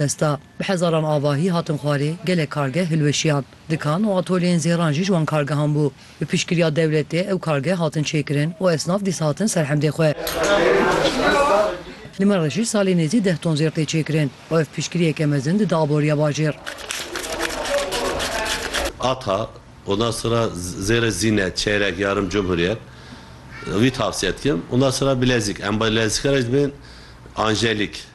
Desta bi hezaran avahî hatin xwarê, gelek kargeh hilweşiyan. Dikan û atolyeyên zêran jî ji wan kargehan bû. Bi piştgiriya dewletê ew kargeh hatin çêkirin û esnaf dîsa hatin ser hemdê xwe. Li me re jî salê nêzî deh ton zêr tê çêkirin û ev piştgiriyeke mezin dide aboriya bajêr. Ata, ondan sonra zêrê zîne, çeyrek, yarım, cumhuriyet, wî tavsiye dikim. Ondan sonra bilezîk, em bilezîke re jî dibên anjelîk.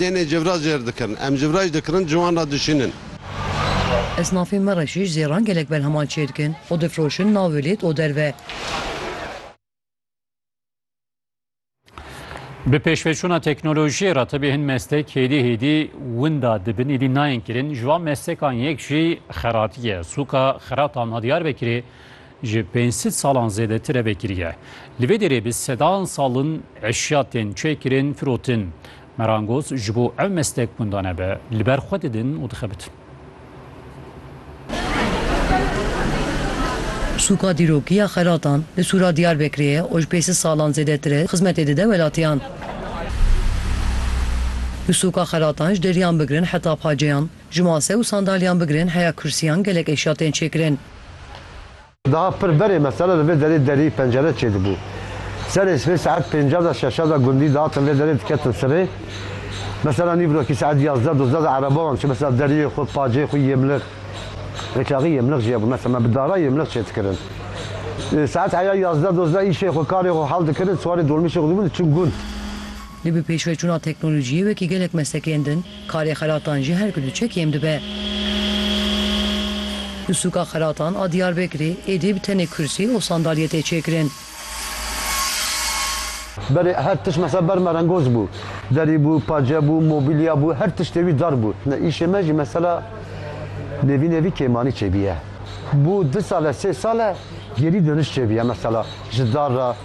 Dênê civra jêr dikirin. Em civra jî dikirin ciwan re dişînin. Esnafên me re jî jêran gelek berheman çê dikin û difroşin nav û lêt û derve. Bi pêşveçûna teknolojiyê re tevî hin mestek hêdî hêdî winda dibin êdî nayên kirin. Ji wan mestekan yek jî xeratî ye. Sûka xeratan a Diyarbekirê Ji pênc sed salan zêdetir e vekiriye. Li vê derê bi sedan sal in eşya tên çêkirin, firotin. Merangoz ji bo ev meslek winda nebe, li ber xwe didin û dixebitin. Sûka dîrokî ya xelatan li Sûra Diyarbekirê ye û ji pênc sed salan zêdetir e xizmetê dide welatiyan. Li sûka xelatan ji deriyan bigirin heta paceyan, Ji mase û sandalyan bigirin heya kursîyan gelek êşya tên çêkirin. Daha pir berê mesela li vê derê derî, pencere çêdibû. Serê sibê saet pênca de şeşa de gundî dihatin vê derê diketin sirê. Mesela nîvroki saet yazdeh dozdeh de ereba wan çû mesela deriyê xwe, pacê xwe yê mlix. Rêçaxî yê mlix jî hebû mesela me bi dara yê mlix çêdikirin. Saet heya yazdeh dozdeh îşê xwe, karê xwe hal dikirin, siwarê dolmîşê xwe dibûn diçûn gund. Lê bi pêşveçûna teknolojiyê wekî gelek meslekên din, Karê xelatan jî her ku diçe kêm dibe. Di sûka xelatan a Diyarbekirê êdî bi tenê kursî û sandalyê tê çêkirin. Berê her tişt mesela ber merengoz bû. Derî bû, pace bû, mobilya bû, her tiştê wî dar bû. Îşê me jî mesela nêvî nêvî kêmanî çêbîye. Bû du sal e, sê sal e gerî doniş çêbîye mesela ji dar re.